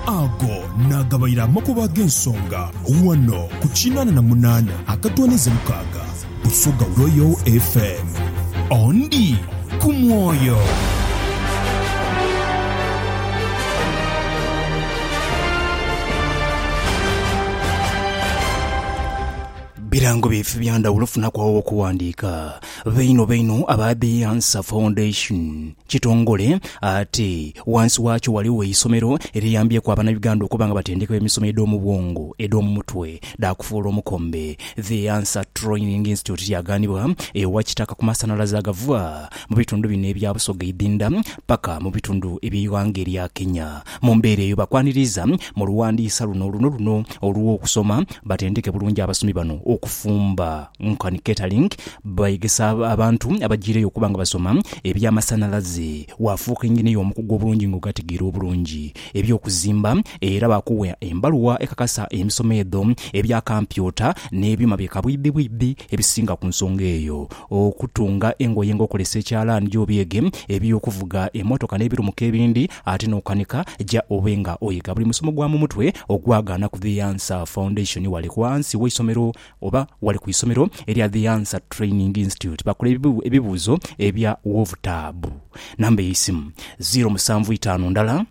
Ago naagabaire amakubo ag'ensonga ghano ku kinaana na munaana akatoonheze mukaaga Busoga Royal FM. Ondi ku mwoyo. Birango byaife bya ndhawulo funaku agho w'okuwandiika. Baino baino aba Beyance Foundation. Kitongole ate wansi wakyo waligho eisomero eriyambyeku abana Uganda okuba nga batendekebwa emisomo edhomu bwongo, edhomu mutwe, dha kufuula omukombe. The Answer Training Institute yaghanibwa ewa Kitaka ku masanhalaze agava mu bitundu bino ebya Busoga eidhindha paka mu bitundu ebye ighanga erya Kenya. Mu mbeera eyo bakwaniriza mu lughandiisa luno luno luno olwo kusoma batendeke bulungi abasomi bano okufumba. Nkani Keterlink bwayegesa abantu abajiireyo okuba nga basoma eby'amasanhalaze, waafuuka engineer omukugu obulungi nga ogategeera obulungi eby'okuzimba era baakuwa embaluwa ekakasa emisomo edho ebya kampyuta n'ebyuma bye kabwidhibwidhi ebisinga ku nsonga eyo. Okutunga engoye nga okozesa ekyalaani ja obyege, eby'okuvuga emmotoka n'ebirumuka ebindi ate n'okukanika ja obe nga oyega buli musomo gwa mu mutwe ogwagaanaku The Answer Foundation wale ku ghansi w'eisomero Oba wali ku isomero erya The Answer Training Institute bakole ebibuuzo ebya wovutaabu. Namba y'eisimu, ziiro musanvu itaanu ndala,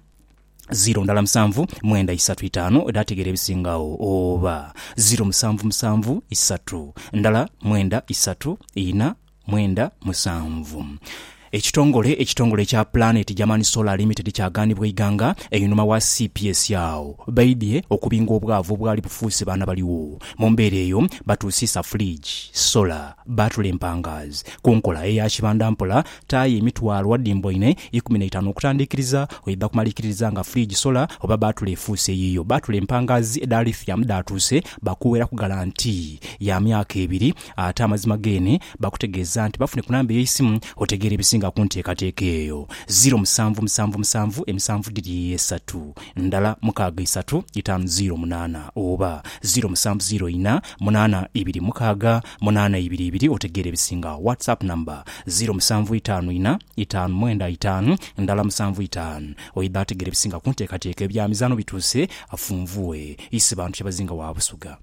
ziiro ndala musanvu mwenda isatu itaanu edha tegeera ebisingagho oba ziiro musanvu musanvu isatu ndala mwenda isatu ina. mwenda musanvu. Ekitongole ekitongole ekya Planet German Solar Limited kyaganibwa eighanga einhuma wa cps agho baidhie okubinga obwavu obwali bufuuse baana baligho. Mu mbeera eyo batuusiisa fridge, solar, battle empangaazi ku nkola eya kibanda mpola taaya emitwalo adhimba ine ikumi na itaanu okutandiikiriza oidha kumaliikiririza nga fridge, solar oba battle efuuse eyiyo. Battle empangaazi edha lithium dhaatuuse bakuweraku galanti ya myaka ebiri. Ate amazima geene bakutegeeza nti bafune ku namba ey'eisimu otegeere ebisinga ku nteekateeka eyo. Ziiro musanvu musanvu musanvu emisanvu dhiri esatu ndala mukaaga isatu itaanu ziiro munaana oba ziiro musanvu ziiro ina munaana ibiri mukaaga munaana ibiri ibiri otegeere ebisinga WhatsApp number ziiro musanvu itaanu ina itaanu mwenda itaanu ndala musanvu itaanu Oidha ategeere ebisinga ku nteekateeka Ebyamizaano bituuse afunvue Isebantu kyebazinga wa Busuga.